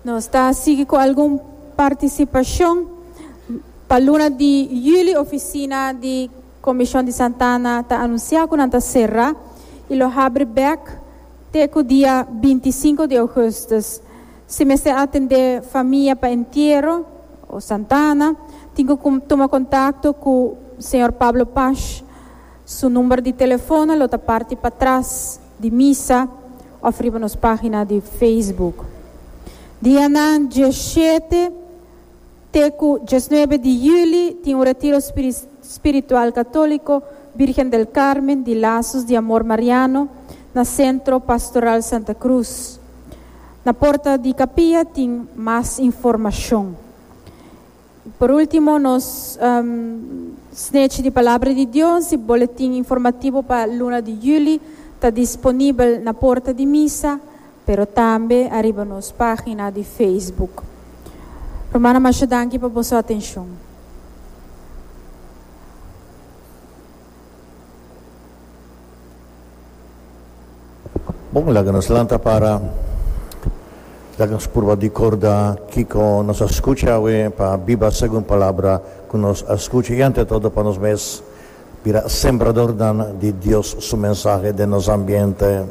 Nos ta sigui cu algun participacion. Pa luna di juli oficina di Comision di Santana ta anuncia cu nan ta cerra y lo habri bek te cu dia 25 di augustus. Si mester atende famia pa entiero o Santana tin cu tuma contacto cu Señor Pablo Pash. Su number di telefono lo ta parti patras. di misa of riba nos pagina di Facebook. Dianan dje shete te cu djes nuebe di juli tin un retiro spiritual catolico Virgen del Carmen di Lazos di Amor Mariano na Centro Pastoral Santa Cruz. Na porta di capilla tin mas informacion. Por ultimo nos snechi di Palabra di Dios y boletin informativo pa luna di juli ta disponibel na porta di misa pero tambe ariba nos pagina di Facebook. Rumannan masha danki pa boso atencion. Bon, laga nos lanta para. Laga nos purba ricorda kico nos a scucha awe pa biba segun palabra cu nos a scucha y ante todo pa nos mes bira sembradornan di Dios su mensahe den nos ambiente.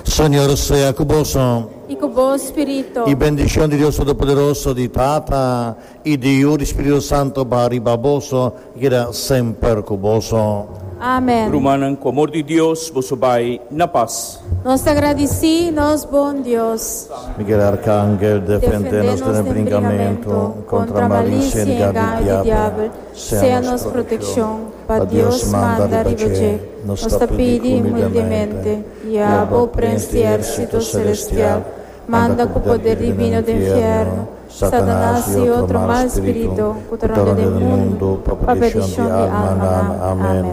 Señor sea cu boso. Y cu bo spirito. Y bendicion di Dios Todopoderoso, di Tata. I di yu di Spiritu Santo baha riba boso i keda semper ku boso. Amen. Rumannan, ku amor di Dios, boso bai na pas. Nos ta gradisí nos bon Dios. Miguel Arkangel, defendé nos den e bringamentu kontra malisie i engaño di diabel. Sea nos protekshon, pa Dios manda riba dje. Nos ta pidi humildemente, i abo, Prens di Érsito Selestial, manda ku poder divino den fièrnu, Satanas i otro mal spiritu ku ta ronda den mundu pa perdishon di almanan. Amen.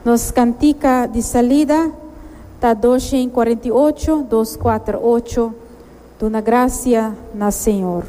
Nos kantika di salida ta dos shen i kuarenta i ocho, dos kuater ocho, Duna grasia na Señor.